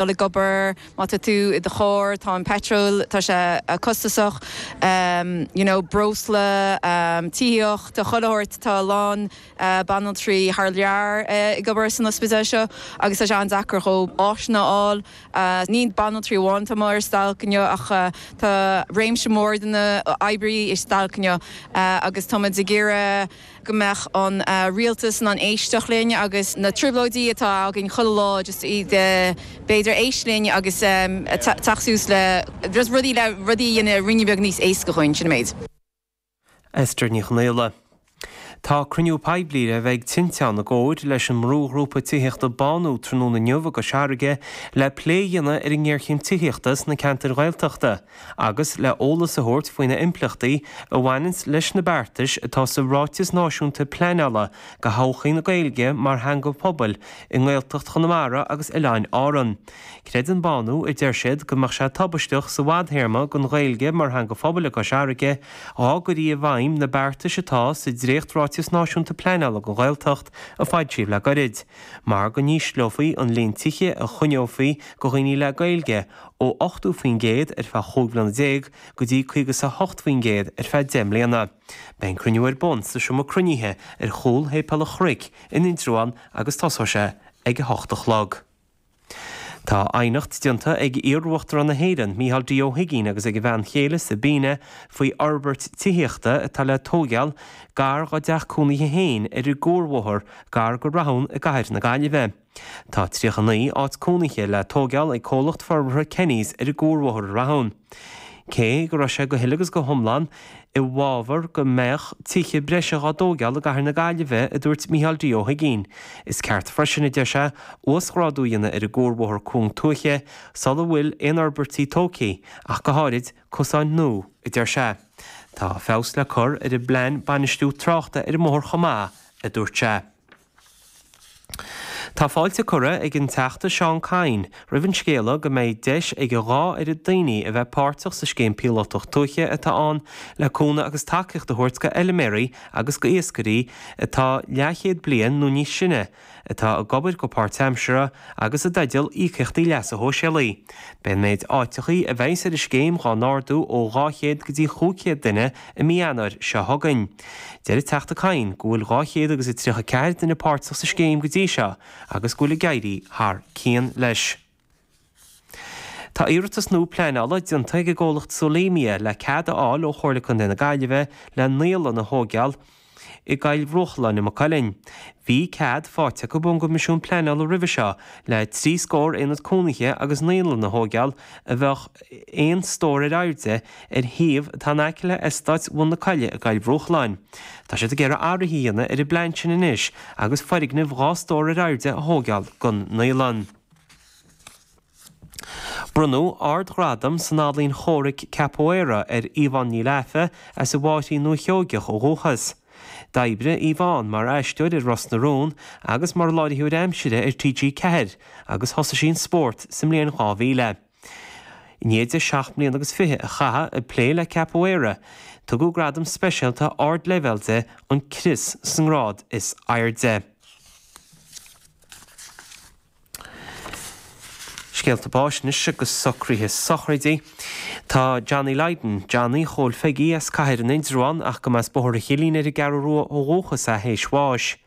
dul ag obair, má tá tú i do charr, tá an peitril, tá sé costasach, you know, breosla, tithíocht, tá chuile shórt, tá a lán banaltraí thar lear ag obair san ospidéal seo agus tá sé an-deacair dhóibh áiseanna a fháil. Ní banaltraí amháin atá muid ar stailc inniu ach tá réimse mór de na hoibrí ar stailc inniu agus táimid ag iarraidh. go mbeadh an rialtas in ann éisteacht linn agus na trioblóidí atá againn chuile lá just iad b'fhéidir éist linn agus teacht suas le just rudaí le rudaí a dhéanamh ruainne beag níos éasca dhúinn, sin an méid. Esther Ní Chonaola. Tá cruinniú poiblí le bheith ag Tinteán i gcomhar leis an mbrúghrúpa tithíochta Bánú tráthnóna inniu i gCois Fharraige le plé a dhéanamh ar an ngéarchéim tithíochta sna ceantair Ghaeltachta. agus le eolas a thabhairt faoi na impleachtaí a bhaineann leis na beartais atá sa Ráiteas Náisiúnta Pleanála do thodhchaí na Gaeilge mar theanga phobail i nGaeltacht Chonamara agus Oileáin Árann. Creideann Bánú, a deir siad, go mbeadh sé tubaisteach sa bhfadthéarma don Ghaeilge mar theanga phobail i gCois Fharraige dhá gcuirí i bhfeidhm na beartais atá sa Dréacht-Ráiteas Náisiúnta Pleanála don Ghaeltacht a foilsíodh le goirid, mar go n-ísleofaí an líon tithe a choinneofaí go dhaoine le Gaeilge, ó 80% ar feadh chúig bhliana déag go dtí caoga is a hocht faoin gcéad ar feadh deich mbliana. Beidh an cruinniú ar bun sa seomra cruinnithe ar chúl Shéipéal an Chnoic in Indreabhán agus tosóidh sé ag a hocht a chlog. Tá aighneacht déanta ag iar-Uachtarán na hÉireann, Micheál D. Ó hUiginn agus ag a bhean chéile, Sabina, faoi fhorbairt tithíochta atá le tóigeáil gar dá dteach cónaithe féin ar an gCuarbhóthar gar go Rathún i gcathair na Gaillimhe. Tá 39 áit cónaithe le tóigeáil ag Comhlacht Forbartha Kenny's ar an gCuarbhóthar i Rathún. Cé go raibh sé go huile agus go hiomlán i bhfabhar go mbeadh tithe breise dhá dtóigeáil i gCathair na Gaillimhe, a dúirt Micheál D. Ó hUiginn, is ceart freisin, a deir sé, uasghrádú a dhéanamh ar an gCuarbhóthar cúng tuaithe sula bhfuil aon fhorbairtí tógtha, ach go háirid, cosáin nua, a deir sé. Tá feabhas le cur ar an bplean bainistiú tráchta ar an mbóthar chomh maith, a dúirt sé. Tá fáilte curtha ag an Teachta Seán Kyne roimh an scéala go mbeidh deis ag a dhá oiread daoine a bheith páirteach sa Scéim Phíolótach Tuaithe atá ann le cúnamh agus tacaíocht a thabhairt go fheiliméaraí agus go iascairí atá leathchéad bliain nó níos sine, atá ag obair go páirtaimseartha agus i dteideal íocaíochtaí leasa shóisialaigh. Beidh an méid áiteachaí a bheidhs ar an scéim dhá n-ardú ó 200 go dtí 500 duine i mí Eanáir seo chugainn. Deir an Teachta Kyne go bhfuil dhá chéad agus a tríocha ceathair duine páirteach sa scéim go dtí seo agus go bhfuil ag éirí thar cionn leis. Tá iarratas nua pleanála déanta ag an gcomhlacht Solemia le cead a fháil ó Chomhairle Contae na Gaillimhe le naíolann a thóigeáil i gCoill Bhruachláin i Maigh Cuilinn. Bhí cead faighte acu ón gCoimisiún Pleanála roimhe seo le trí scór aonad cónaithe agus naíolann a thóigeáil a bheadh aon stór ar airde ar shuíomh atá in aice le Eastát Bhun na Coille i gCoill Bhruachláin. Tá siad ag iarraidh athruithe a dhéanamh ar an bplean sin anois agus foirgneamh dhá stór ar airde a thógáil don naíolann. Bronnadh ardghradam san ealaín chomhraic Capoeira ar Yvonne Ní Laife as an bhFairche i nDúiche Sheoigheach ó dhúchas. D'oibrigh Yvonne mar aisteoir ar Ros na Rún agus mar láithreoir aimsire ar TG4 agus thosaigh sí an spórt sa mbliain 2000. I ndiaidh di seacht mbliana agus fiche a chaitheamh ag plé le Capoeira, tugadh gradam speisialta ardleibhéil di, an crios, sa ngrád is airde. Scéalta báis anois agus Socruithe Sochraidí Tá Johnny Lydon, Johnny Chóil Pheigí, as Cathair in Indreabhán ach go mba as Bóthar an Chillín ar an gCeathrú Rua ó dhúchas é théis bháis.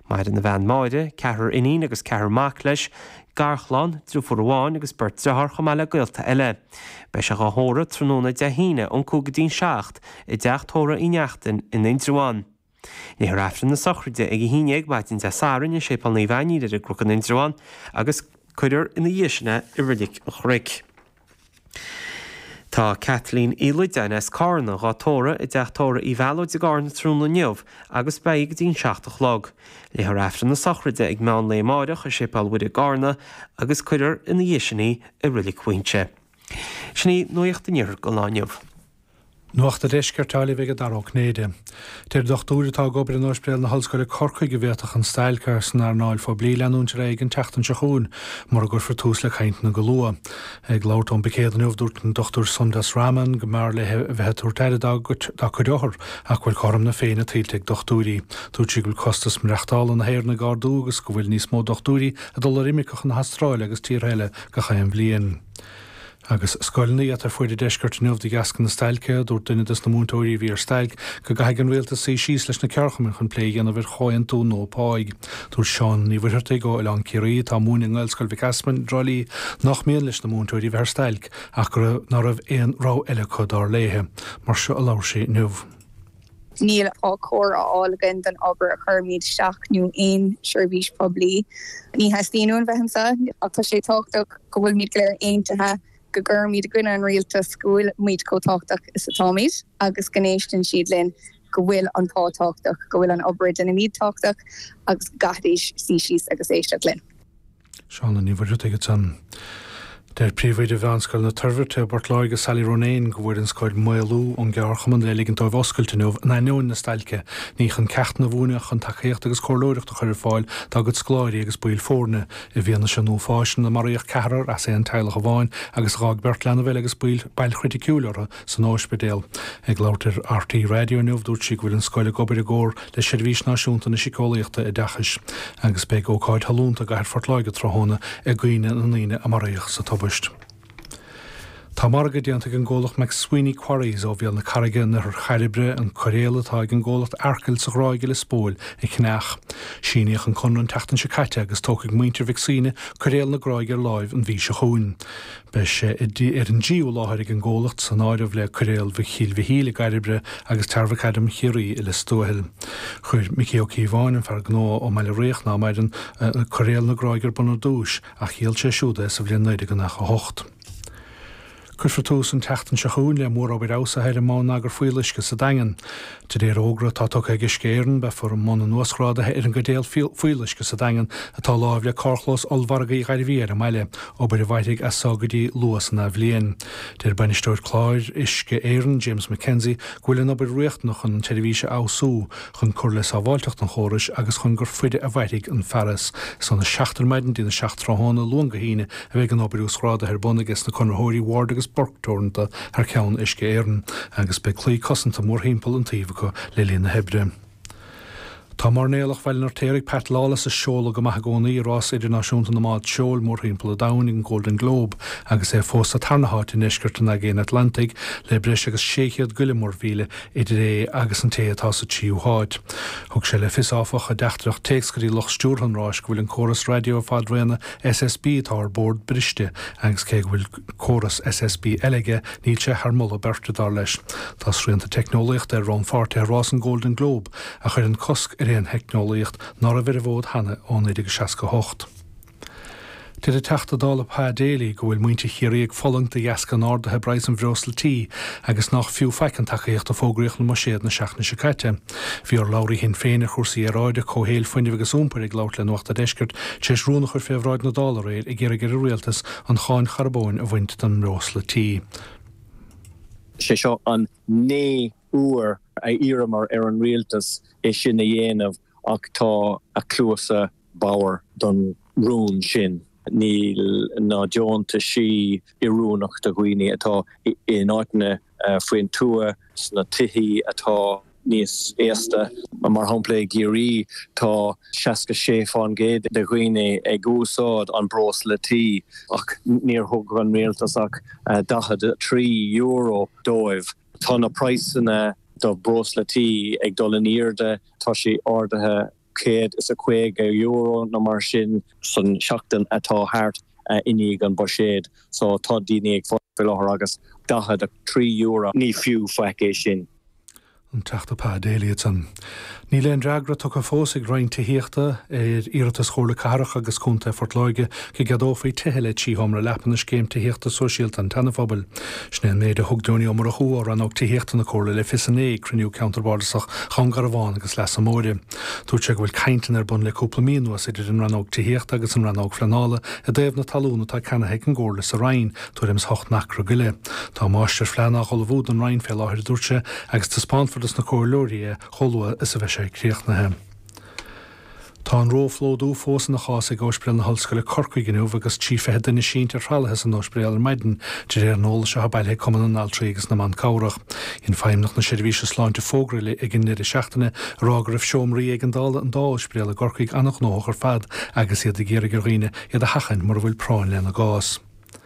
Maireann a bhean Máire, ceathrar iníon agus ceathrar mac leis, garchlann, driofúr amháin agus beirt driotháir chomh maith le gaolta eile. Beidh sé dhá thórramh tráthnóna Dé hAoine ón cúig go dtí'n seacht i dteach tórraidh Uí Neachtain in Indreabhán. Léifear Aifreann na sochraide ag a haon dhéag maidin Dé Sathairn i Séipéal Naomh Ainnín ar an gCnoc in Indreabhán agus cuirfear ina dhiaidh sin é i Reilig an Chnoic. Tá Kathleen Uí Loideáin as Carna dhá tórramh i dteach tórraidh Uí Mhéalóid i gCarna tráthnóna inniu agus beidh go dtí'n seacht a chlog. Léifear Aifreann na Sochraide ag meán lae amáireach i Séipéal Mhuire i gCarna agus cuirfear ina dhiaidh sin í i Reilig Mhaínse. Sin í Nuacht an Iarthair don lá inniu. Nuacht an Deiscirt á léamh ag Dara Ó Cinnéide. Deir dochtúir atá ag obair in Ospidéal na hOllscoile Corcaigh go bhféadfadh an stailc san earnáil phoiblí leanúint ar aghaidh an tseachtain seo chugainn mura gcuirfear tús le cainteanna go luath. Ag labhairt ón bpicéad inniu dúirt an Dr Sundas Raman go mb'fhearr léi a bheith ag tabhairt aire dá cuid othar ach go bhfuil cothrom na féinne tuillte ag dochtúirí. Dúirt sí go bhfuil costas maireachtála na hÉireann ag ardú agus go bhfuil níos mó dochtúirí ag dul ar imirce chun na hAstráile agus tíortha eile gach aon bhliain. Agus scoileanna iata ar fuaid an deiscirt inniu de dheasca na stailce, dúirt duine des na múinteoirí a bhí ar stailc go gcaithfidh an rialtas suí síos leis na ceardchumainn chun plé a dhéanamh ar chomhaontú nua páigh. Dúirt Siún Ní Mhuircheartaigh ó Oileán Ciarraí atá ag múineadh i nGaelscoil Mhic Easmainn i dTrá Lí nách mian leis na múinteoirí a bheith ar stailc ach go raibh ná raibh aon rogha eile acu, dar léithe. Mar seo a labhair sí inniu. Níl pá chóir á fháil againn don obair a chuirimid isteach nó aon seirbhís poiblí. Ní theastaíonn uainn bheith anseo ach tá sé tábhachtach go bhfuilimid go léir aontaithe go gcuirimid i gcoinne an rialtas, go bhfuilimid chomh tábhachtach is atáimid agus go n-éisteann siad linn, go bhfuil an pá tábhachtach, go bhfuil an obair a deinimid tábhachtach agus go gcaithfidís suí síos agus éisteacht linn. Shauna Ní Mhuircheartaigh at an. Deir Príomhoide Mheánscoil na Toirbhirte i bPort Láirge Sally Ronayne go bhfuair an scoil maolú ón gceardchumann le ligint dóibh oscailt inniu in ainneoin na stailce, ní chun ceachtanna a mhúineadh ach chun tacaíocht agus comhairleoireacht a chur ar fáil dá gcuid scoláirí agus baill foirne. I bhfianaise an uafáis ina maraíodh ceathrar as aon teaghlach amháin agus a d'fhág beirt leanbh eile agus bail bail chriticiúil orthu, san óispidéal. Ag labhairt ar RTÉ Raidió inniu dúirt sí go bhfuil an scoil ag obair i gcomhar le Seirbhís Náisiúnta na Siceolaíochta Oideachais agus beidh ócáid shollúnta i gcathair Phort Láirge tráthnóna i gcuimhne na ndaoine a maraíodh sa tubaist. Tá margadh déanta ag an gcomhlacht McSweeney Quarries ó Bhéal na Carraige in oirthear Chairbre an coiréal atá ag an gcomhlacht Arkil sa Ghráig i Lios Póil a cheannach. Síníodh an conradh an tseachtain seo caite agus tógfaidh muintir Mhic Suibhne coiréal na Gráige ar láimh an mhí seo chugainn. Beidh sé ar an dtríú láthair ag an gcomhlacht san áireamh le Coiréal Mhic Chill Mhichíl i gCairbre agus Tarramhacadam Chiarraí i Lios Tuathail. Chuir Micí Ó Cíobháin, an fear gnó ón mBaile Riabhach ná maireann, Coiréal na Gráige ar bun ar dtúis ach dhíol sé siúd é sa bhliain 1998. Cuirfear tús an tseachtain seo chugainn le mórobair fheabhsaithe ar an mbonneagar fuíolluisce sa Daingean. De réir fhógra atá tugtha ag Uisce Éireann, beifear i mbun an uasghrádaithe ar an gcaidéal fuíolluisce sa Daingean atá láimh le carrchlós ollmhargaidh Ghairbhí ar an mbaile, obair a mhairfidh as so go dtí luath san athbhliain. Deir Bainisteoir Cláir Uisce Éireann, James McKenzie, go bhfuil an obair riachtanach chun an tseirbhís a fheabhsú, chun cur le sábháilteacht an chórais agus chun gur faide a mhairfidh an fearas. Is ón 7 ar maidin go dtí an 7 tráthnóna, Luan go hAoine, a bheidh an obair uasghrádaithe ar bun aige sna conraitheoirí Ward agus Burke Teoranta, thar ceann Uisce Éireann agus beidh claí cosanta mórthimpeall an tsuímh acu le linn na hoibre. Tá mairnéalach Bhaile an Fheirtéaraigh Pat Lawless ag seoladh go maith i gcónaí i rás idirnáisiúnta na mbád seoil mórthimpeall an domhain an Golden Globe agus é fós sa tarna háit i ndeisceart an Aigéin Atlantaigh le breis agus 600 go leith muirmhíle idir é agus an té atá sa tríú háit. Thug sé le fios, áfach, i dteachtaireacht téacs go dtí lucht stiúrtha an ráis go bhfuil an córas raidió fadraoin SSB atá ar bord briste agus cé go bhfuil córas SSB eile aige, níl sé thar moladh beirte, dar leis. Tá srianta teicneolaíochta ar rannpháirtithe rás an Gholden Globe a chuireann cosc ar aon theicneolaíocht ná raibh ar an bhfód cheana ó 1968. Deir an Teachta Dála Pa Daly go bhfuil muintir Chiarraí ag fulaingt de dheasca an ardaithe i bpraghas an bhreosla tí agus nach fiú faic an tacaíocht a fógraíodh i mbuiséad na seachtaine seo caite. Bhí urlabhraí Shinn Féin ar chúrsaí aeráide, comhshaoil, fuinnimh agus iompair ag labhairt le Nuacht a' Deiscirt tar éis rún a chur fé bhráid na Dála aréir ag iarraidh ar an Rialtas an cháin charbóin a bhaint den mbreosla tí. Sé seo an naoú uair a iarramar ar an Rialtas é sin a dhéanamh ach tá a cluasa bodhar don rún sin. Níl na deontaisí oiriúnach do dhaoine atá in áiteanna faoin tuath, sna tithe atá. níos aosta. Mar shampla, i gCiarraí tá 66% de dhaoine ag úsáid an bhreosla tí ach níor thug an rialtas ach €43 dóibh. Tá na praghsanna do bhreosla tí ag dul in airde. Tá sé ardaithe €150 nó mar sin. san seachtain atá thart i ndiaidh an buiséid so tá daoine ag fulaingt faoi láthair agus €43. Ní fiú faic é sin. An Teachta Pa Daly ansan. Níl aon fhreagra tugtha fós ag an Roinn Tithíochta ar iarratas Chomhairle Cathrach agus Contae Phort Láirge go gceadófaí tithe le trí sheomra leapa i Scéim Tithíochta Sóisialta an tSeanaphobail. Sin é an méid a thug Donie Ó Murchú ó Rannóg Tithíochta na Comhairle le fios inné ag cruinniú Ceantar Bardasach Dhún Garbhán agus Leasa Móire. Dúirt sé go bhfuil cainteanna ar bun le cúpla mí anuas idir an Rannóg Tithíochta agus an Rannóg Phleanála i dtaobh na talún atá ceannaithe ag an gComhairle sa Rinn, tuairim is ocht n-acra go leith. Tá máistirphlean á ullmhú don Rinn fé láthair a dúirt sé agus taispeánfar dos na Comhairleoirí é chomh luath is a bheidh sé críochnaithe. Tá an róphlódú fós ina chás ag Óispidéal na hOllscoile Corcaigh inniu agus trí fiche duine sínte ar thralaithe san óispidéal ar maidin, de réir an eolais atá bailithe ag Cumann na nAltraí agus na mBan Cabhrach. Dhein Feidhmeannach na Seirbhíse Sláinte fógra eile ag an ndeireadh seachtaine a rá go raibh seomraí éigeandála an dá óispidéal i gCorcaigh an-ghnóthach ar fad agus iad ag iarraidh ar dhaoine iad a sheachaint mura bhfuil práinn lena gcás.